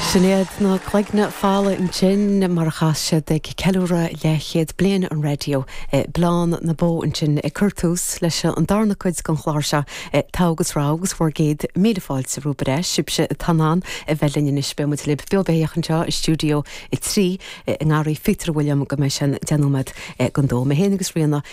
Sin iad na Cloigne Folmha ansin, mar a chas siad ag ceiliúradh leathchéad bliain an raidió Bleán na Bó ansin, ag cur tús leis an darna cuid den chlár seo, Togha agus Rogha agus bhur gcéad míle fáilte romhaibh ar ais, sibhse atá in ann a bheith linn anois. Beidh muid libh beo beithíoch anseo i Stiúideo 3 i nGarraí Phíotair Uilliam go mbeidh sé an deich nóiméad don dó. Mé féin agus Ríona.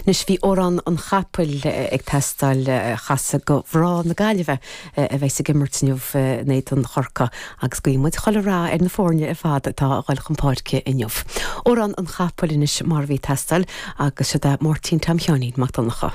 Anois bhí Amhrán an Chapaill ag teastáil. Chasadh do mhná na Gaillimhe a bheas ag imirt inniu in éadan Chorcaí agus guíonn muid chuile rath ar na foirne ar fad atá a dhul chun páirce inniu. Amhrán an Chapaill anois mar a bhí ag teastáil agus siod é Máirtín Tom Sheáinín Mac Donnacha.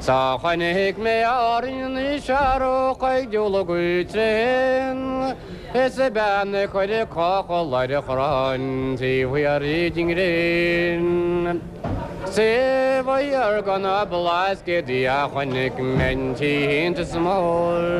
'S chonaic mé in Árainn searrach ag diúl gaoth tréan, Is a bean ag cur a cochall ar a chrann taobh thiar den ghréin. 'S taobh thiar de na Blascaodaí a chonaic mé an t-iontas mór.